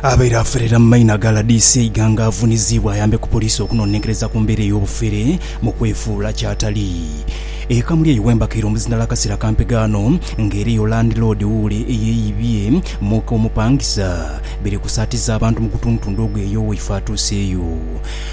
Abaire aferera mu maina ga rdc Iganga avuniziibwa ayambe ku poliisi okunonenkereza ku mbeera ey'obufere mu kwefuula kyatali. E Kamulyeyi wembakaire omuzinda Lakasira Kampega ano nga era eyo landiloodi wuule eyeyibye muka omupangisa biri kusaatiza abantu mu gutundutundu ogwo eyo waife atuuseeyo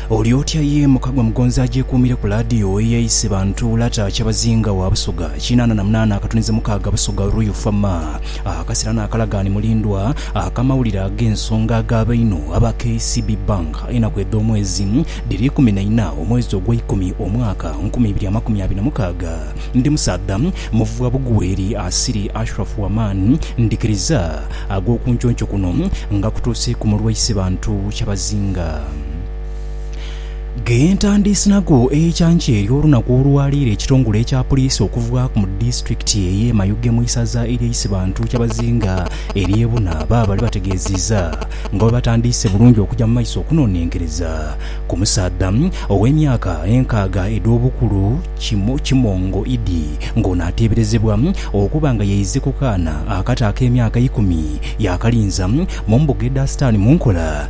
oli otya ye mukagwa mugonzi agyekuumire ku laadiyo eyaise bantu lata kyabazinga wa Busoga kinaana na munaana akatuniza mukaaga Busoga Royal Fama Akasera n'akalagaani mulindwa ak'amawulire ag'ensonga agaaba einho aba KCB Bank enaku edh'omwezi dhiri ikumi na ina omwezi ogwa ikumi omwaka nkumi ibiri amakumi abiri na mukaaga. Ndi musaadha muvwa bugweri asiri Ashraf Waman ndhikiriza ag'okunconco kuno nga kutuusiiku mulwaise bantu kyabazinga. Ghentandiise nago eikyankya eryo olunaku olwa leero ekitongole ekya puliisi okuvaaku mu disitulikiti eye Mayuge mu isaza erye Isibantu Kyabazinga erye Buna baabale bategeziiza nga bwebatandiise bulungi okuja mu maiso okunonenkereza ku musaadha owe myaka enkaaga edhobukulu Kimongo Idi nga ono ateberezebwa okuba nga yaize ku kaana akato akemyaka ikumi yakalinza mu mbuga edha sitani munkola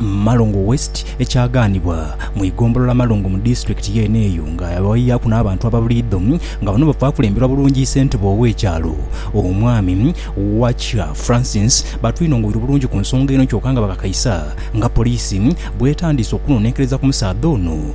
mu Malongo West ekyagaanibwa mu igombolola Malongo mu disitulikiti yeene eyo nga yabawaiyaaku n'abantu ababuliidho nga bano bava kulemberwa bulungi ssentebe ow'ekyalo Omwami Wacha Francis batwinongoire bulungi ku nsonga eno kyoka nga bakakaisa nga poliisi bwetandiise okunonenkereza ku musaadha ono